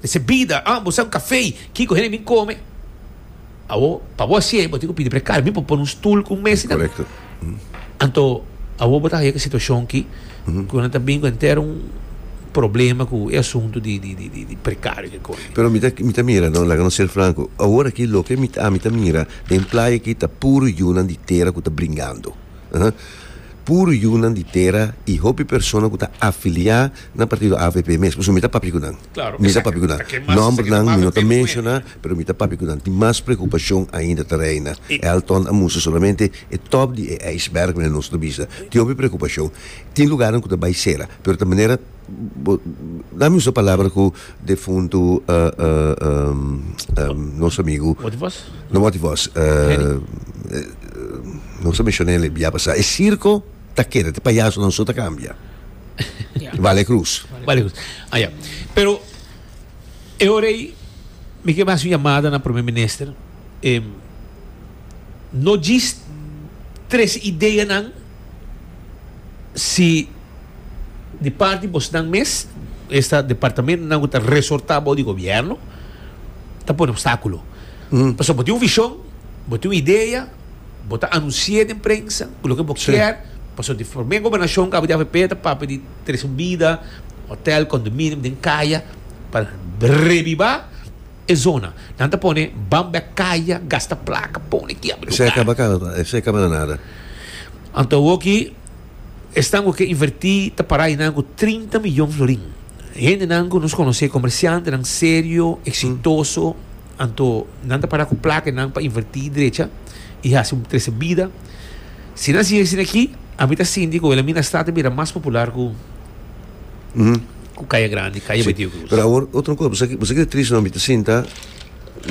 Dese bida, ah, bo sa un café, kico hende bin come? Awo, pa bo haci'e, bo tin cu pidi precar, mi por pone un stoel cu un mesa y tal. Correcto. Anto, awo bo ta haja cu e situacion ki, cu nan ta bin cu henter un problema cu e asunto di, di, di, di, di precario cu e cosa aki. Pero mi ta, mi ta mira, no, laga nos ser franco, awor aki loke mi, ami ta mira den playa aki ta puro yunan di tera cu ta bringando, ah, puro yunan di tera y hopi persona cu ta afilia Na partido avp mes, pasobra mi ta papia cu nan. Claro, Mi ta papia cu nan. exacto. Aquel mas Nomber seki ta nan mi no ta papia medio menshoná, cuenta. pero mi ta papia cu nan. Tin mas preocupacion ainda ta reina. I- E Alton a mustra solamente e top di e ijsberg mira nos ta bisa. Tin hopi preocupacion. Tin lugarnan cu ta bay cera, pero ta manera bo dame usa e palabra cu defuntu nos amigo, Motie Vos? no Motie Vos, Henny. nos a menshonael e bia pasá, e circo. ta keda te payasonan so ta kambia. Vale Cruz. Vale Cruz. Ah, ya. Pero e hora ei mi ke basi un yamada na Prome Minister. Em, no djis tres ideanan si di parti bosnan mes, esta departamentonan ku ta resortá bou di gobièrnu, ta pone obstákulo. Pasobra bo tin un vishon, bo tin un idea, Bo ta anunsi'é den prensa ku loke bo kier pasobra di promé gobernashon ku APDHP ta papia di tres un bida, hotèl, kondominium den kaya pa rebiba e zona. Nan ta pone bamba e kaya, gasta plaka, pone kiabra lugar. Anto awor aki esnan ku ke invertí ta pará einan ku trinta miyon florin. Hendenan ku nos konosé, komersiantenan serio, eksitoso. Anto nan ta para ku plake nan pa invertí i drecha i hasi un trese bida. Si nan sigui asina aki, ami ta sinti ku Wilhelminastad ta bira mas popular ku Kaya Grandi, Kaya Betio Krus. Pero awor otro kos, boso ke ta tris no? Mi ta sinta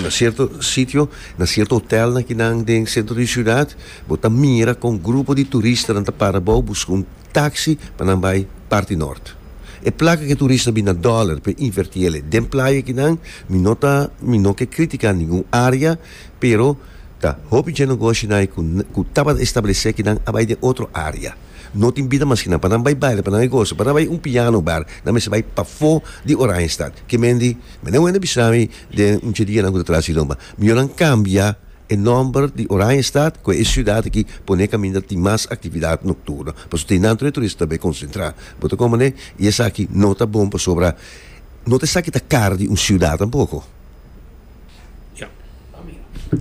na sierto sitio, na sierto hotelnan kinan den sentro di siudat, bo ta mira kon grupo di turistanan ta para abou buska un taksi pa nan bai parti nort. E plaka ke turista bini na Dollar pa inverti el'e den playa kinan, mi no ta mi no ke kritika ningun área, pero ta hopi dje nogoshinan ku ku tabata establesé kinan a bai den otro área. No tin bida mas kinan pa nan bai baila, pa nan e gosa, pa nan bai un piano bar, nan mester bai pafó di Oranjestad. Ke men di, Meneer Wende bisami den un dje dianan ku ta tras di lomba, mihó nan kambia E nòmber di Oranjestad ku e siudat aki pone kaminda tin mas aktividat nokturno pasobra tin nan tur e turista ta bai konsentrá. Bo ta kòmane? I esaki no ta bon pasobra no ta esaki ta kar di un siudat tampoko.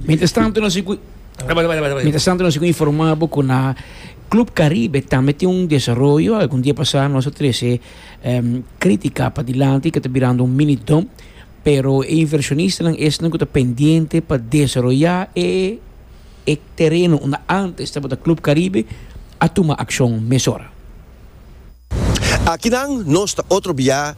Mientras tanto nos sigu Mientras tanto nos sigu informá bo ku na Club Caribe tambe tin un desaroyo. Algun dia pasá nos a trese Critica pa dilanti ku ta birando un mini dom. Pero e invershonistanan esnan ku ta pendiente pa desaroyá e e tereno unda ántes tabata Club Caribe a tuma akshon mesora. Akinan nos ta otro biá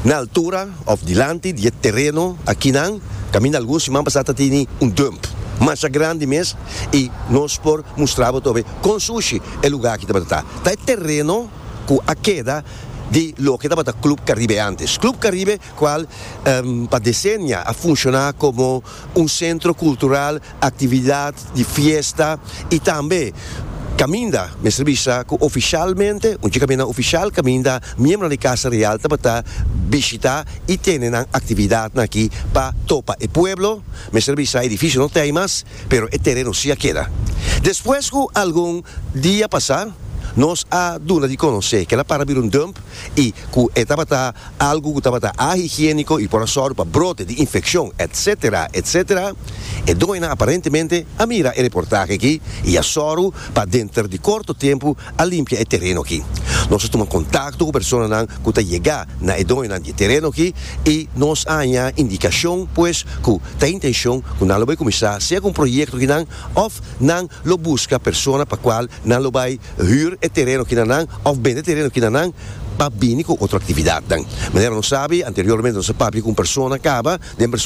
na altura òf dilanti di e tereno akinan kaminda algun siman pasá ta tene un dump masha grandi mes i nos por mustra bo tobe kon sushi e lugá aki tabata ta. Ta e tereno ku a keda di loke tabata Club Caribe ántes. Club Caribe cual pa decennia a funciona como un centro cultural, actividad di fiesta y tambe caminda mester bisa cu oficialmente, un dje caminda oficial caminda, miembronan di Casa Real tabata bishita y tene nan actividadnan aki pa topa e pueblo, mester bisa edificio no ta ahi mas pero e tereno si a keda. Despues cu algun dia pasa nos a duna di conoce que el a para bira un dump y cu e tabata. algu ku tabata ahigiéniko i por a sòru pa brote di infekshon, etc. Etc. E doñanan aparentemente a mira e reportahe aki i a sòru pa denter di korto tempu a limpia e tereno aki. Nos a tuma kontakto ku personanan ku ta yega na e doñanan di e tereno aki i nos a haña indikashon pues ku ta intenshon ku nan lo bai kuminsá segun proyekto ki nan òf nan lo buska persona pa kual nan lo bai huur e tereno kina nan of bende tereno kina nan pa bini ku otro aktividatnan. Manera nos sabi anteriormente nos a papia ku un persona kaba den persona.